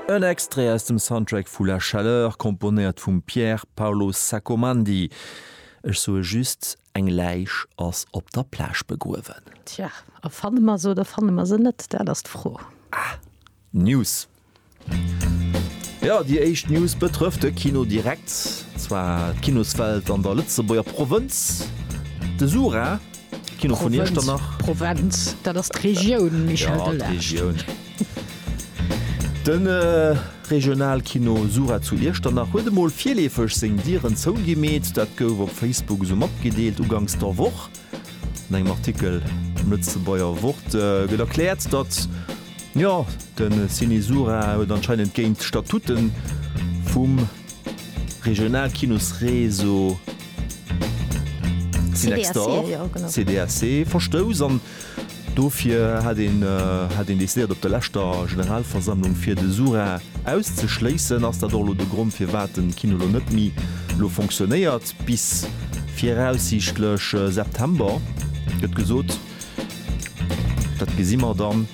En Extrait aus dem Soundtrack vu La Chaleur, komponéiert vum Pier Paolo Sacomandi. Ech soe just, eng Läich ass op der Plage begruewen. Tja, a fanne mer se oder fanne mer se net, dat ass d'Fro. Ah, News. Jo, déi éischt News betrëfft de Kino direkt, zwar d'Kinoswelt an der Lëtzebuerger Provënz. De Sura. Provenz, dat ass d'Regioun, Michel Delage. Regionalkino Sura zu Iechternach huet emol virleefeg seng Dieren zougemeet. Dat gouf op Facebook esou matgedeelt uganks der Woch. An engem Artikel am Lëtzebuerger Wort gëtt erkläert, datt jo de Ciné Sura huet anscheinend géint d'Statuten vum. Regional Kinos Réseau Cinextor, CDAC, verstouss an dofir hat een hat een decidéiert op der leschter Generalversammlung fir de Sura auszeschléissen. Ass dat och elo de Grond firwat den Kino elo net méi elo fonctionnéiert bis viraussiichtlech September gëtt gesot. Dat gesi mer dann.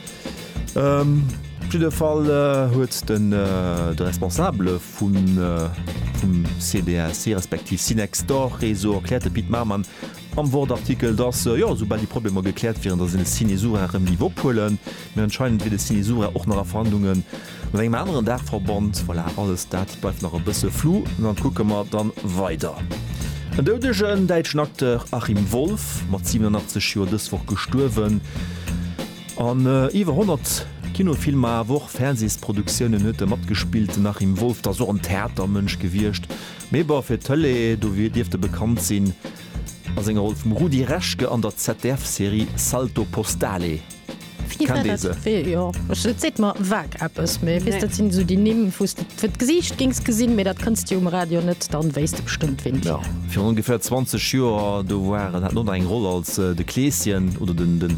Op jidde Fall huet de Responsabele vum CDSI respektiv Cinextor Réseau erkläert, de Pit Maman, am Wort-Artikel, datt, jo, esoubal déi Problemer gekläert wieren, datt een de Cinesura erëm géif ophuelen. Mee anscheinend wier de Cinesura och nach a Verhandlunge mat engem aneren Daachverband. Voilà, alles dat bleift nach e bësse flou. An da kucke mer da weider. En doudegen däitschen Acteur Achim Wolff, mat 87 Joer dës Woch gestuerwen. An iwwer 100 Kinofilmer awer och Fernsehsproduktiounen huet de matgespillte Nachim Wolf. T'ass och en Theatermënsch gewiescht, mee bon, fir d'Tëlee dofir dierft e bekannt sinn a senger Roll vum Rudi Reschke an der ZDF-Serie Salto Postale. Kennt ee se? Jo, et seet mer vague eppes, mee weess, dat sinn esou déi Nimm, wou s de fir d'Gesiicht géings gesinn, mee dat kënns de jo um Radio net, dann wéisst de bestëmmt wien et ass. Virun ongeféier 20 Joer, do war en, hat en oder eng Roll als de Kleeschen oder den.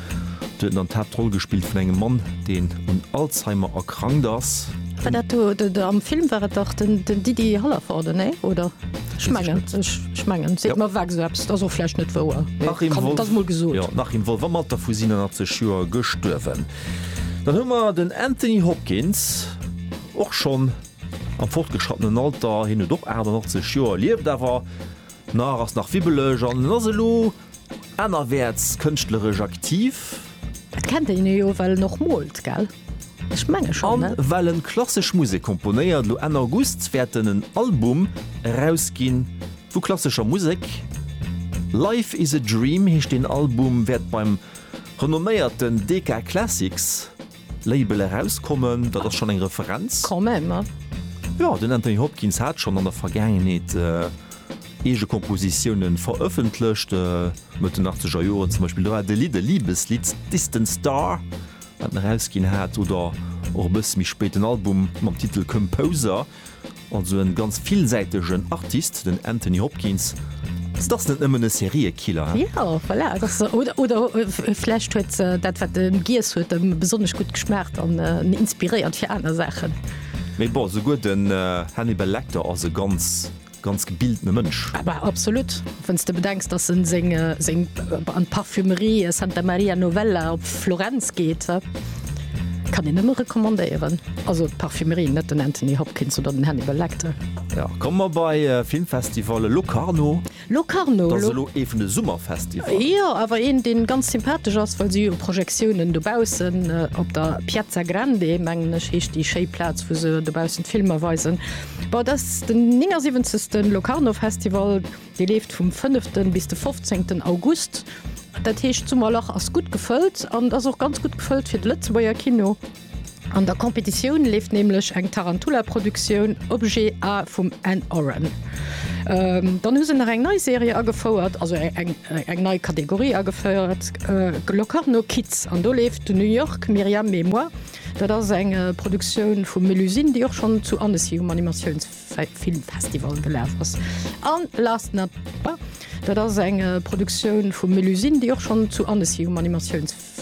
Do huet en dann d'Haaptroll gespillt vun engem Mann, deen un Alzheimer erkrankt ass. War dat do de, de, am Film war et dach den, den Didi Hallervorden, nee, oder? Ech Weess ech mengen, net. ech, ech mengen, seet Ja. mer ewech esou eppes, et ass och vläicht net wouer, mee Nach een kann, Wolf. et ass mol gesot. Jo, nach een Wolf, am Alter vu 87 Joer gestuerwen. Dann hu mer den Anthony Hopkins, och schonn am fortgeschrattenen Alter, hien huet och 88 Joer, lieft awer nach, ass nach wibbeleg an en ass elo, Anerwäerts kënschtleresch aktiv. Et kennt een e jo, well en och moolt, gell? Ech menge schonn, ne? A well en klassesch Musek komponéiert. Lo Enn August wäert en en Album erausginn vu klassescher Musek. Life is a Dream heescht deen Album, wäert beim renomméierten Decca Classics. Label erauskommen, dat ass schonn eng Referenz. Quand même. Jo, den Anthony Hopkins hat schonn an der Vergaangenheet eege Kompositioune verëffentlecht, Mëtt den achtzeger Joren zum Beispill. Do war de Lidd e Libeslidd, Distant Star, wat en erausginn hat, oder och e bësse méi spéit den Album mam Titel Composer. Also en ganz villsäitegen Artist den Anthony Hopkins, se ass net nëmmen e Seriekiller. Jo voilà oder vläicht huet dat wat en giess huet em besonnesch gutt geschmaacht an en inspiréiert fir aner Saachen. Mee bon, souguer den Hannibal Lecter ass e ganz Ganz gebiltene Mënsch. Bah, absolut, wann s de bedenks, dass en seng seng an d'Parfumerie Santa Maria Novella op Florenz geet. Kann een nëmme recommandéieren, also d'Parfumerie, net den Anthony Hopkins oder den Hannibal Lecter. Jo, komme mer bei Filmfestival, Locarno. Locarno, Dat ass elo ee vun de Summerfestivalle. Jo, awer een, dee ganz sympathesch ass, well si hu jo Projektiounen dobaussen op der Piazza Grande, mengen ech heescht déi, schéi Plaz, wou se dobaussen d'Filmer weisen. Bon, dat ass den 79. Locarno Festival, dee leeft vum 5. bis de 15. August. Dat heescht, d'Summerlach ass gutt gefëllt an et ass och ganz gutt gefëllt fir de Lëtzebuerger Kino. An der Competitioun leeft nämlech eng Tarantula-Produktioun Objet A vum Ann Oren. Dann hu se nach eng nei Serie agefouert, also eng nei Kategorie agefouert, Locarno Kids, an do leeft New York, Miriam et moi. Dat ass eng Produktioun vu Melusine, déi och schonn zu Annecy um Animatiounsfilmfestival gelaf ass. An last not least, dat ass eng Produktioun vu Melusine, déi och schonn zu Annecy um Animatiounsfestival.